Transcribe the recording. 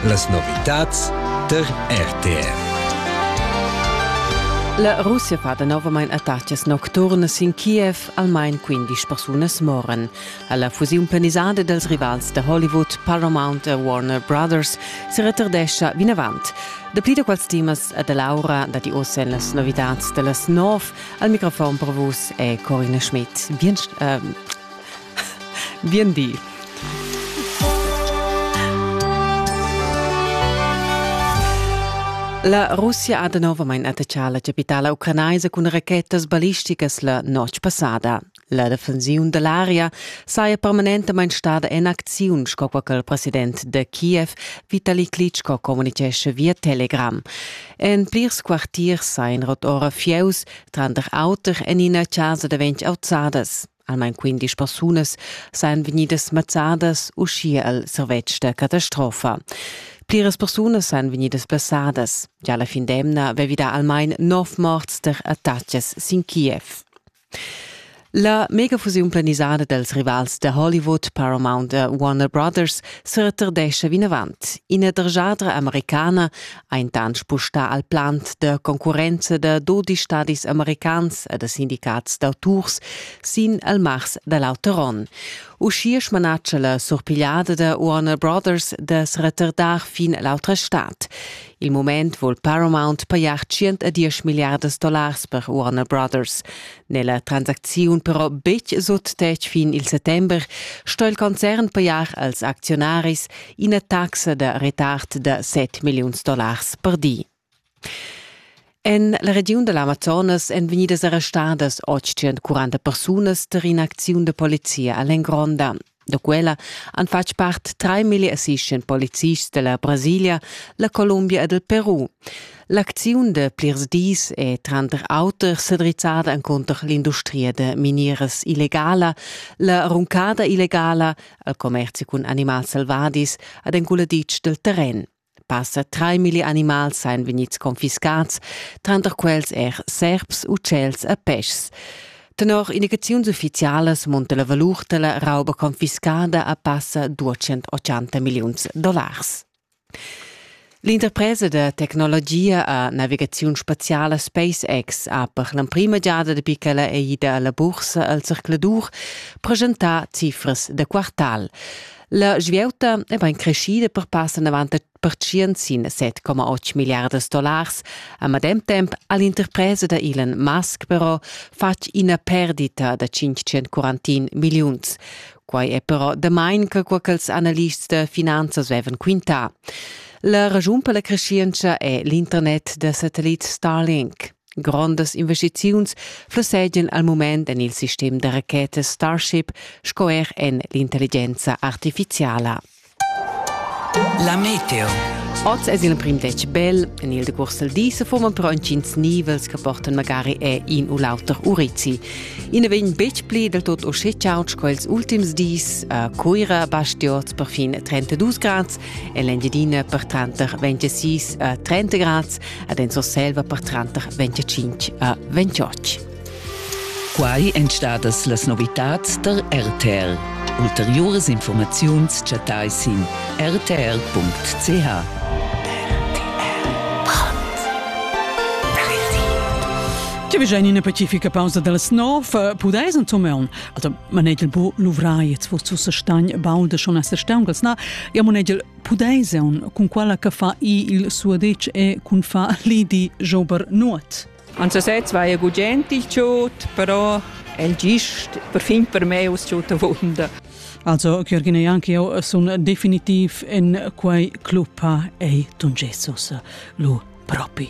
Las novitads tar RTR. La Russia fa danovamain attacas nocturnas sin Kiev, almain 15 persunas moran. Alla fusiun planisada dals rivals da Hollywood, Paramount e Warner Brothers, si retardescha vinavant. Dapli da quels temas e da Laura dat i ossa en las novitads da las 9. Al microfon per vus è Corina Schmidt. Bien, äh, Bien di. La Russia ha danovamain attachà la chapitala ucranaisa cun rachetas ballisticas la notg passada. La defensiun da l'aria saja permanentamain stada en acziun, sco quai ch'il president da Kiev, Vitali Klitschko, communitgescha via Telegram. En plirs quartiers sajan ora fieus, tranter auter en ina chasa da ventg auzadas. Almain quindisch persunas sajan vegnidas mazzadas uschia al servetsch da catastrofa. Pliras persunas sajan vegnidas blessadas. Gia la fin d'emna avevi dà almain nov morts tar attacks sin Kiev. La megafusiun planisada dals rivals da Hollywood, Paramount e Warner Brothers, sa retardescha vinavant. Ina dergiadra americana Aintan spustà al plant da concurrenza da dodi stadis americans e da sindicats d'auturs sin el mars da l'auter onn. Uschia smanatscha la surpigliada da Warner Brothers da se retardar fin l'autra stad. Il moment vul Paramount pajar 110 miliardas dollars per Warner Brothers. n'è la transacziun però betg sut tetg fin il settember, sto il concern pajar als acziunaris ina taxa da retard da 7 milliuns dollars per di. En la regiun da l'Amazonas èn vegnidas arrestadas 840 persunas tar in'acziun da polizia a l'Engronda. Da quella han fatg part 3.000 assistents polizists della Brasilia, la Columbia ed il Peru. L'acziun de plirs dis è tranter auter sedrizzada encunter l'industria de minieras illegala, la runcada illegala, il commerzi cun animals selvadis ed enculaditsch del terren. Passa traimilli animals ein vegnids confiscats, tranter quels er serps, ucels e peschs. Tenor indicaziuns ufficialas munta la valur dalla rauba confiscada a passa 280 milliuns dollars. L'interpresa da tecnologia a navigaziun spaziala SpaceX ha per l'emprima giada dapi ch'ella è ida alla bursa al circladur presentà cifras da quartal. La svieuta è bain creschida per passar davant per tschientin 7,8 milliardas dollars. A medem temp ha l'interpresa da Elon Musk però fatg ina perdita da 541 milliuns. Quai è però damain che quo ch'ils analists da finanzas vevan quintà. La ragiun per la crescienza è l'internet da satellit Starlink. Grondas investiziuns flossegian al mument en il sistem da rachetas Starship sco er en l'intelligenza artifiziala. La meteo. Oz è l'emprim detg bel. En il decurs del di se forman però entgins nivels che portan magari è in u l'auter urizi. I ne vegn betg pli del tot uscheciaut sco ils ultims dis. A Cuira basti oz per fin 32 grads e l'Engiadina per tranter 26 a 30 grads ed en Surselva per tranter 25 a 28. Quai èn stadas las novitads der RTL. Ulteriuras informaziuns chattai sin rtl.ch. Ti veggia in ina pacifica pausa dals nov, eh, pudais intomaun. Also, manegel bo luvrai, jetzt forz ussa stagn, baul da schon as stauncals, na, ja manegel Pudais eun cun quella che fa i il suadetsch e cun fa lidi jober nuot? Ansasez war ja gugent il tschut, però el gist perfin per me us tschutta wunda. Also, Georgina Janke, io sun definitiv in quei club ei Tun Jesus lu propi.